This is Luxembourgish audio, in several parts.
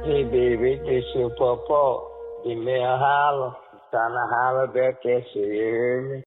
Dee Baby dee sou Papa dee méi erhalen kann erhale wäert dee sou jee.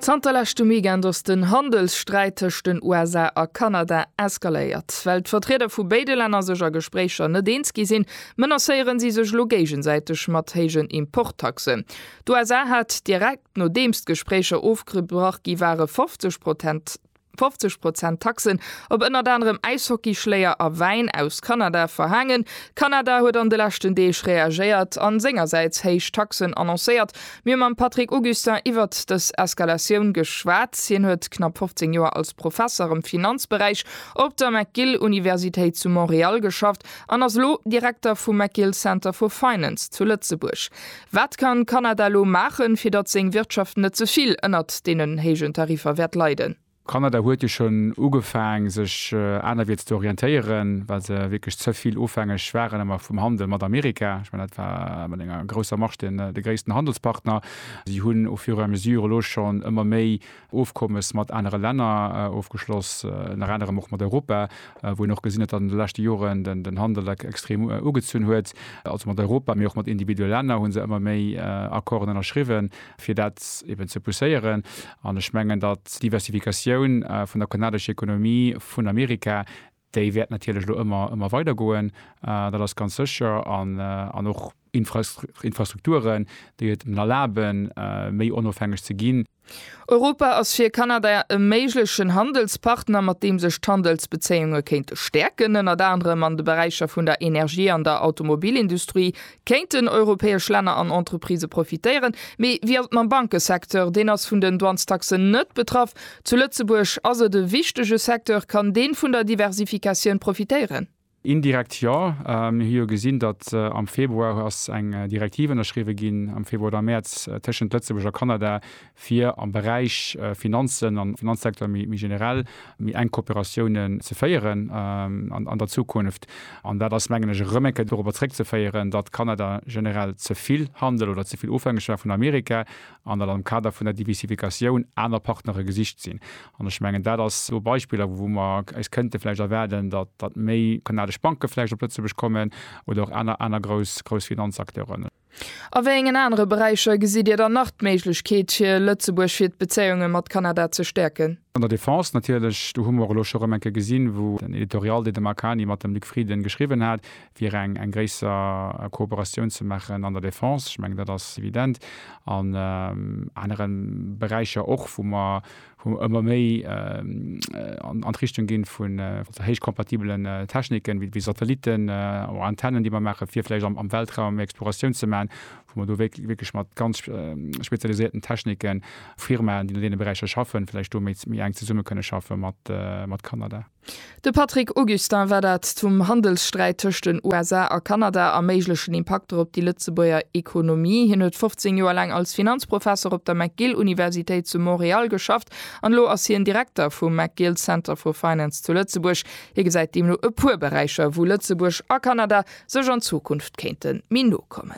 Zanter leschtem Weekend ass den Handelssträit tëscht den USA a Kanada eskaléiert. Well d'Vertrieder vu béide Länner sech a Gespréicher net eens gi sinn, menacéieren si sech elo géigesäiteg mat héijen Importtaxen. D'USA hat direkt nodeems d'Gespréicher ofgebrach gi ware 50 Prozent 50 Prozent Taxen op ënnert anerem Äishockeyschléier a Wäin aus Kanada verhaangen. Kanada huet an de leschten Deeg reagéiert an sengersäits héich Taxen annoncéiert. Mir hu mam Patrick Augustin iwwert dës Eskalatioun geschwat. Hien huet knapp 15 Joer als Professer am Finanzberäich op der McGill Universitéit zu Montreal geschafft an ass elo Direkter vum McGill Center for Finance zu Lëtzebuerg. Wat kann Kanada elo maachen, fir datt seng Wirtschaft net ze vill ënnert deenen héijen Tariffer wäert leiden? Kanada huet jo schonn ugefaang, sech anerwierts ze orientéieren, well se wierklech ze vill ofhängeg waren ëmmer vum Handel mat Amerika. Ech mengen, dat war mat enger grousser Marge de gréissten Handelspartner. Si hunn au fur et à mesure elo schonn ëmmer méi Ofkommes mat anere Länner ofgeschloss, ënner anerem och mat Europa, wou een och gesinn huet, datt an de leschte Joren den Handel extrem ugezunn huet. Also mat Europa, mee och mat individuelle Länner hu se ëmmer méi Accorden ënnerschriwwen, fir dat eben ze pousséieren. An ech mengen, datt d'Diversifikatioun vun der kanadescher Ekonomie vun Amerika Déi wäert natierlech elo ëmmer, ëmmer weider goen, dat ass ganz sécher. An, an och Infrastruk, Infrastrukturen, déi et en erlaben, méi onofhängeg ze ginn. Europa ass fir Kanada e méiglechen Handelspartner, mat deem sech d'Handelsbezéiunge kéinte stäerken, ënnert anerem an de Beräicher vun der Energie an der Automobilindustrie, Kéinten europäesch Länner an Entreprisë profitéieren, mee wéi ass et mam Bankesecteur? Deen ass vun den Douanestaxen net betraff. Zu Lëtzebuerg ass et e wichtege Secteur. Kann deen vun der Diversifikatioun profitéieren? Indirekt jo. Mir hu jo gesinn, datt am Februar ass eng Direktiv ënnerschriwwe ginn, am Februar oder Mäerz, tëschent Lëtzebuerg a Kanada, fir am Beräich Finanzen an Finanzsektor méi generell méi enk Kooperatiounen ze féieren an der Zukunft. An dat ass, mengen ech, erëm eng Kéier dorobber zréckzeféieren, datt Kanada generell ze vill Handel oder ze vill ofhängeg war vun Amerika an datt am Kader vun der Diversifikatioun aner Partnere gesicht sinn. An ech mengen, dat ass elo Beispiller, wou mer eis kënnte vläicht erwaarden, datt méi kanadesch Banke vläicht op Lëtzebuerg kommen oder och aner grouss Finanzakteuren. A wéi engen anere Beräicher gesitt Dir dann nach d'Méiglechkeet fir Lëtzebuerg fir d'Bezéiunge mat Kanada ze stäerken? An der Defense natierlech. Do hu mer och elo scho erëm eng Kéier gesinn, wou den Editorial, deen de Marc Hany mat dem Luc Frieden geschriwwen hat, fir eng eng gréisser Kooperatioun ze maachen an der Defense. Ech mengen, dat ass evident. An anere Beräicher och, wou mer, wou mer ëmmer méi an d'Richtung ginn vun héichkompatibelen Techniken, wéi Satellitten oder Antennen, déi mer maachen, fir vläicht am Weltraum méi Exploratioun ze maachen, wou mer do wierklech mat ganz spezialisierten Techniken, Firmaen, déi an deene Beräicher schaffen, vläicht do méi enk zesumme kënne schaffe mat Kanada. De Patrick Augustin war dat zum Handelssträit tëscht den USA a Kanada a méiglechen Impakter op déi Lëtzebuerger Ekonomie. Hien huet 15 Joer laang als Finanzprofesser op der McGill-Universitéit zu Montreal geschafft an elo ass hien Direkter vum McGill Center for Finance zu Lëtzebuerg. Hie gesäit deemno e puer Beräicher, wou Lëtzebuerg a Kanada sech an Zukunft kéinte méi no kommen.